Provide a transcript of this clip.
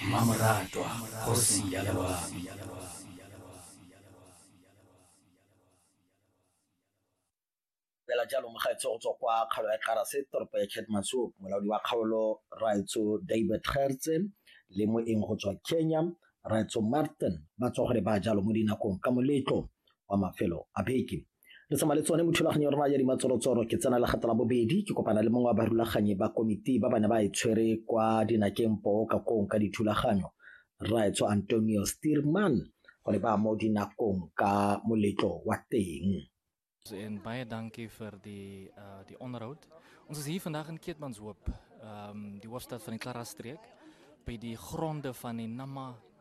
mmamoratwa kgosi ya loabi fela jalo mo gaetsho go tswa kwa kgaolo ya karase toropo ya chatmaso molaodi wa kgaolo raetso david gertse le moeng go tswa kenya raetso martin ba tswa gore ba jalo mo dinakong ka moletlo wa mafelo a beke Re tsamaya le tsone mo thulaganyong ya rona ya dimatsorotsoro ke tsena le gata la bobedi ke kopana le mongwe wa barulaganyi ba komiti ba ba ne ba e tshwere kwa dinakeng poo ka kong ka dithulaganyo rraetsho antonio steerman go ne ba mo dinakong ka moletlo wa teng En baie dankie vir die uh die onderhoud. Ons is hier vandag in Keetmanshoop, ehm um, die hoofstad van die Klara streek by die gronde van die Nama